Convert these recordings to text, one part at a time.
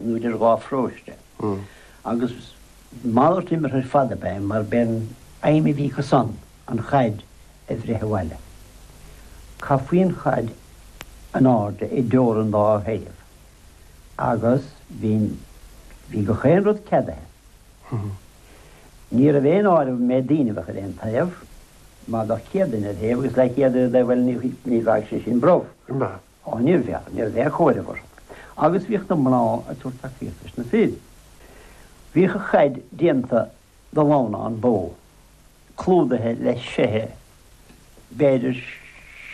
nó idir dhá pharóiste, agus malairt imeartha ar fad ab ea é mar b'é an aidhm a bhí acu san an chaid a bhreith abhaile. Caithfí an chaid in airde idir an dá thaobh. Agus bhí, bhí gach aon rud ceadaithe. Ní raibh aon áireamh méid daoine a bheadh ar aon taobh, mar bheadh 100 duine ar thaobh agus leathchéad ar an dtaobh, bhuel, ní bheadh sé sin brobh. Ó, ní bheadh, ní bheadh chóireofar. Agus bhíodh na mná ag tabhairt tacaíocht dos na fir. Bhíodh an chaid déanta de lamhnán bó, clúdaithe le seithe, b'fhéidir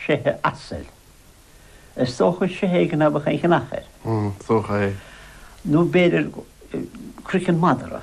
seithe asail. Is dócha seithe éigin a bheadh an ghnach air. Nó b'fhéidir croiceann madra.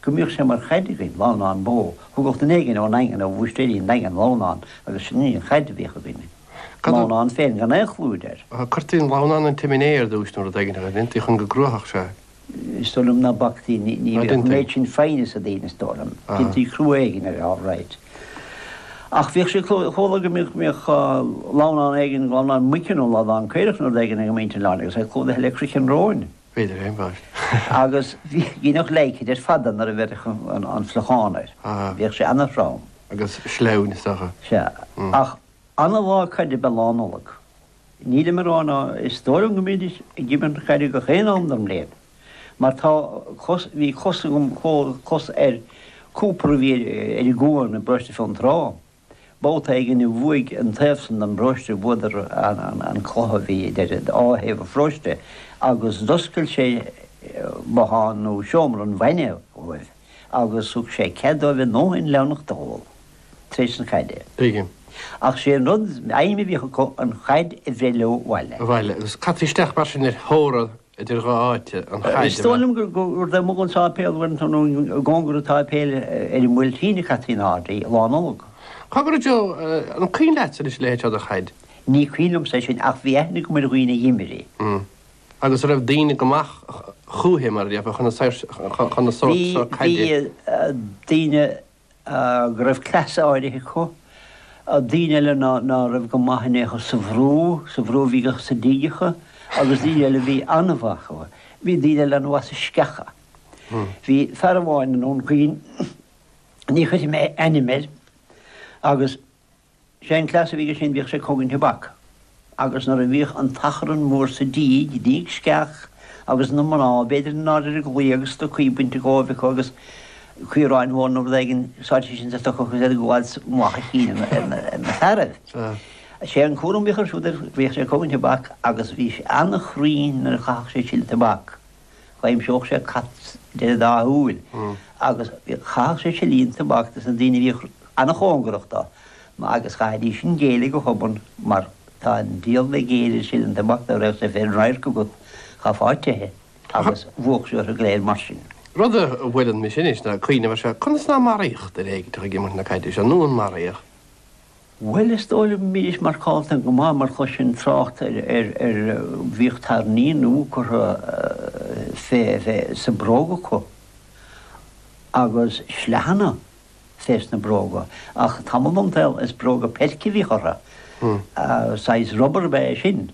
go mbíodh sé mar chaid againn lamhnán bó a thugadh duine éigin ón nDaingean, ó Bhúistéirí an Daingin, lamhnán agus sin í an chaid a bhíodh againn, an lamhnán féin gan aon chlúid air. Cuirtí an lamhnán insa tsimné ar dtúis nó rud éigin mar sin, tuige chun go gcruafadh sé? Is dóigh liom ná bactaí, ní bhíodh an méid sin foighne sa daoine is dóigh liom, deintí crua éigin air, alright. Ach bhíodh sé, chuala go mbíodh lamhnán éigin, lamhnán muice nó lamhnán caorach nó rud éigin ag muintir an Oileáin agus é clúdaithe le croiceann róin. B'fhéidir é, an bheirt. Agus dheineadh leidhce de ar fad nuair a bheireadh an fliuchán air. Bhíodh sé an-throm. Agus sleamhain is dócha. Sea. Ach an-lá caide ab ea Lá Nollag. Nílim ag rá ná is dóigh liom go mbídís ag imirt caide gach aon am den bhliain, mar tá cos, bhí cos agam, cos ar cúipéar a bhí ar an gcuan briste i bhFionntrá. Babhta éigin a bhuaigh an taobh san den bparóiste bhuadar an cluiche a bhí idir dhá thaobh an pharóiste agus d'oscail sé bothán nó seomra an bhainne dhóibh agus thug sé cead dóibh a ndóthain leamhnachta a dh'ól tar éis an chaide. B'éigean. Ach 'sé an rud aidhm a bhíodh acu an chaid a bhreith leo abhaile. Abhaile agus cad isteach mar sin ar thóir an. idir dhá áite, an chaid a bheith. Is dóigh liom gur amuigh ag an sáipéal bhain tú nó i gcóngar an tsáipéil ar an mBuailtín a caití in airde í Lá Nollag. Cogar a Joe, an cuimhin leatsa anois a leithéid seo de chaid? Ní cuimhin liomsa é sin ach bhí aithne agam ar dhaoine a d'imir í. Umm. Agus an raibh daoine go maith chúithi, mar a déarfá, chun na saor, chun an sórt seo caide. Bhí, bhí daoine. go raibh cleasa áirithe acu, daoine eile ná raibh go maith in aon chor sa bhrú, sa bhrú a bhí acu sa díogacha, agus daoine eile a bhí an-mhaith acu. Bhí daoine eile an-mhaith sa sceacha. Bhí fear amháin i nDún Chaoin, ní chuirfidh mé a ainm air, agus. Sé an cleas a bhí aige sin bhíodh sé ag cogaint tobac agus nuair a bhíodh an t-achrann mór sa díg, i ndíg sceach, agus na mná, b'fhéidir in airde ar an gclaí agus stocaí bainte dhóibh acu agus caorán mór nó rud éigin sáite insa stoca agus iad ag gabháil i mullach an chinn ar na fearaibh. Sé an cúram bhíodh air siúd, bhíodh sé ag cogaint tobac agus bhí sé ana-chruinn nuair a chaitheadh sé seile tobac. D'aimseodh sé cad deireadh dá shúil agus chaitheadh sé seilíní tobac sna daoine a bhíodh an-chóngarach dó agus chaithfidís an Ghaeilge a thobann mar tá an diabhal ní fhéadfaidís leis an seilín tobac dá mbeadh sé féin i radharc agat chomh fáitithe agus bhuadh sé orthu go léir mar sin. Rud a bhfuilimse anois ag cuimhneamh ar seo, conas ná maraíodh daoine ag imirt na caide seo nó ar maraíodh? Bhuel, is dóigh liom go mbídís marcálta go maith mar chuiris trácht ar, bhíodh tairní nua curtha fé, fé, sa bhróg acu agus sleánna fé sna bróga ach tamall den tsaol is bróga peilce a bhíodh orthu, saghas rubar ab ea é sin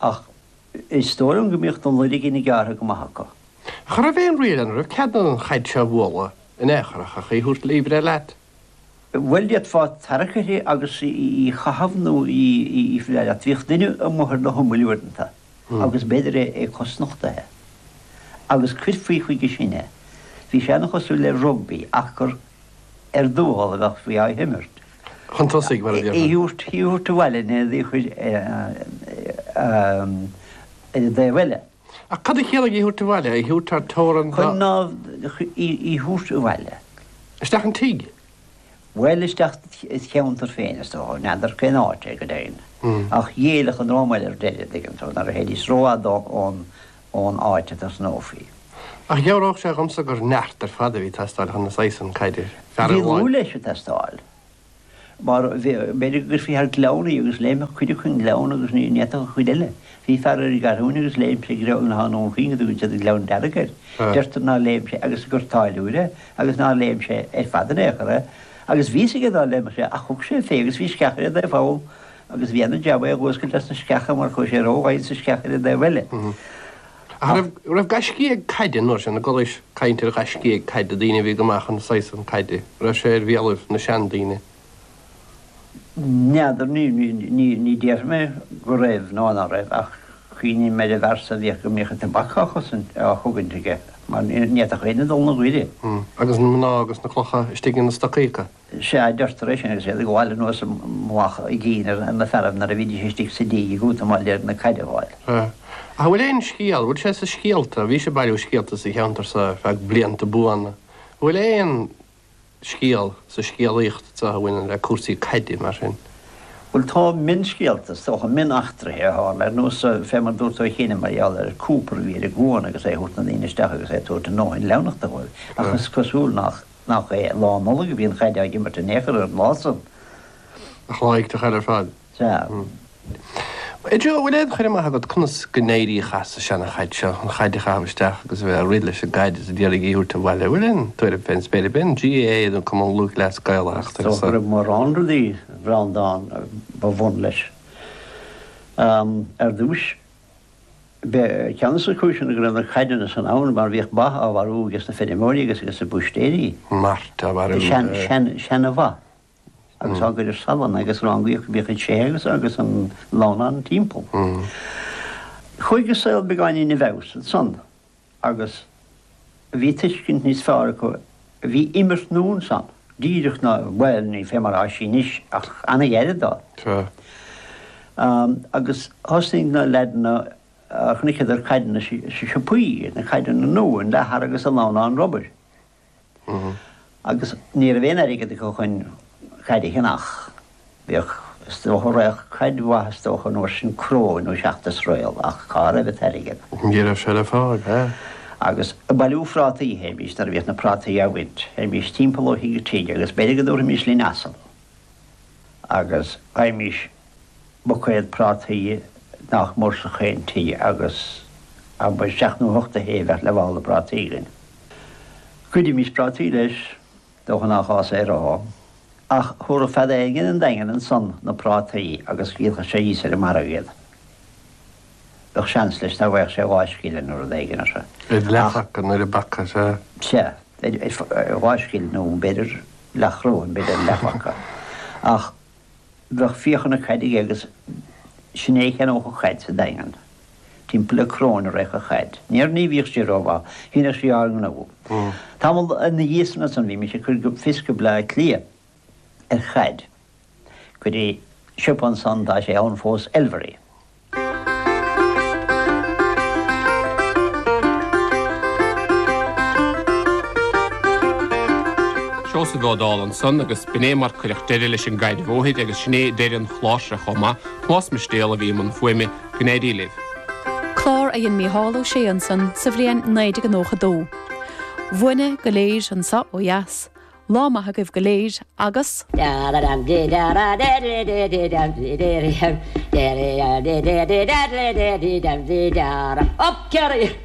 ach is dóigh liom go mbíodh na loirgíní gearrtha go maith acu. Ach an raibh aon riail, an raibh cead an chaid seo a bhualadh in aon chor ach a thabhairt ar iompar leat? Bhuel, d'fhéadfá tarrac uirthi agus í a chaitheamh nó í a bhualadh leat. Bhíodh duine amuigh ar na himill uaireanta agus b'fhéidir é cosnochtaithe. Agus chuirfí chuige sin é. Bhí sé an-chosúil le rugbaí ach gur ar drómáil a bheadh sí á himirt. Chun tosaigh, mar a déarfá. Í a thabhairt abhaile, nó í a chur ar an dtaobh eile. Ach cad a chiallaigh 'í thabhairt abhaile', 'í thabhairt thar teorainn' nó? Chun 'í thabhairt abhaile'. Isteach an tigh? Bhuel, isteach id' cheantar féin, is dócha. N'fheadar cén áit é go deimhin. Ach d'éiríodh an drómáil ar deireadh, an dtuigeann tú, nuair a théidís rófhada ón áit a dtosnófaí. Ach dheabhródh sé dhomsa gur neart ar fad a bhí ag teastáil chun an saghas san caide, fear amháin? Bhí lúth leis ag teastáil. mar b'fhéidir go gcuirfí thar gleann í agus léimfeadh cuid acu an gleann agus ní fhéadfadh an chuid eile. Bhí fear ar an gCeathrúin agus léim sé gleann atá ann chugainn a dtugann siad an gleann dearg air. Dúrthas nár léim sé agus gur táilliúir é agus nár léim sé ar fad in aon chor é agus bhí fhios aige nár léimfeadh sé ach thug sé fé agus bhí sceach ar an dtaobh thall agus bhí an-jab é a dh'fhuascailt as na sceacha mar chuaigh sé rófhada sa sceach ar an dtaobh eile. Ach an raibh gaiscígh caide an uair sin, an gcualaís caint ar ghaiscígh caide, daoine a bhí go maith chun an saghas san caide, raibh sé ar bhéalaibh na seandaoine? N'fheadar, ní déarfainn go raibh ná ná raibh, ach cuimhním ar an bhfear so a bhíodh go mbíodh an tobac á chosaint, á chogaint aige, mar ní fhéadfadh éinne dul ina ghaire. Agus na mná agus na clocha istigh ina stocaí acu? Sea, adúrthar é sin agus iad ag gabháil anuas amach sa cheann ar na fearaibh nuair a bhídís istigh sa díg ag útamáil chun na caide fháil. Sea. Ach an bhfuil aon scéal, bhfuil sé sa scéalta, bhís ag bailiú scéalta sa cheantar so ar feadh blianta buana, an bhfuil aon scéal sa scéalaíocht so a bhaineann le cúrsaí caide mar sin? Bhuel, tá mionscéalta, is dócha, mion-eachtraithe a tharla ar nós, fé mar dúirt tú, ó chianaibh mar gheall ar Cooper a bhí ar an gcuan agus é ag thabhairt na ndaoine isteach agus é ag tabhairt a ndóthain leamhnachta dhóibh. Ach is cosúil nach. Nach é Lá Nollag a bhí an chaid á imirt in aon chor ar an lá san? Nach lá iontach eile ar fad? Sea. Joe, bhfuil aon chur amach agat conas go n-éiríodh as an seana-chaid seo, an chaid a chaitheamh isteach agus a bheith ag rith leis an gcaid is a d'iarraidh í a thabhairt abhaile? An bhfuil aon tuairim fén spéir ab in GAA nó Cumann Lúthchleas Gael a theacht ar so? Thug mórán rudaí Breandán ba bhun leis. Ar dtúis. B'é ceann desna cúiseanna go raibh na caideanna san ann mar bhíodh ba á mharú ages na feirmeoirí agus ages na búistéirí. Mart á mharú. Sean, sean, seana-bha agus á gcur ar salann agus rangaíodh go bíodh an tseithe agus agus an lamhnán timpeall. Chuaigh an saol beagáinín i bhfeabhas ansan. Agus bhí tuiscint níos fearr acu, bhí imirt nua ansan, díreach ná, bhuel, ní fé mar atá sí anois, ach an-ghairid dó. Tá. Agus thosnaigh na leaideanna, chonaiceadar caideanna sna siopaí, na caideanna nua, an leathar agus an lamhnán rubair. Agus ní raibh aon airgead acu chun caid a cheannach. Bhíodh, is dócha, raghadh caid mhaith, is dócha, an uair sin, cróin nó seacht is réal, ach cá raibh an t-airgead? Ní raibh sé le fáil, b'fhéidir. Agus ag bailiú phrátaí a théimís nuair a bhíodh na prátaí á bhaint. Théimís timpeall ó thigh go tigh agus b'fhéidir go dtabharfaimis linn asal. agus faighimís buicéad prátaí nach mór ins gach aon tigh agus ab ea seacht nó hocht a haon bheadh leathmhála prátaí againn. Ghoidimís prátaí leis, dócha nach gá san a rá, ach thabharfadh fear éigin an Daingean ansan na prátaí agus dhíolfadh sé thíos ar an margadh iad. bheadh seans leis nach bhfaigheadh sé dhá scilling nó rud éigin as. Ar leathphaca nó ar an bpaca, sea. Sea, dhá scilling nó b'fhéidir leathchróin, b'fhéidir ar leathphaca. Ach bheadh fiacha na caide aige agus sin é a cheannódh an chaid sa Daingean, timpeall le cróin a raghadh an chaid. Níor ní bhíodh sí rómhaith, ach dheineadh sí ár ngnó. Tamall ina dhiaidh san bhímís ag cur fios go Bleá Cliath. ar chaid. Go dtí siopa ansan, tá sé ann fós, Elvery. Seosamh Ó Dálaigh ansan agus b'in é mar cuireadh deireadh leis an gcaid ó thuaidh agus sin é deireadh an chláir seo chomh maith, Tomás Mistéal a bhí i mbun fuaime. Go n-éirí libh. Clár a dhein Mícheál Ó Sé ansan sa bhliain 1992. Uainne go léir anso ó dheas, Lá maith agaibh go léir agus. Dearadh.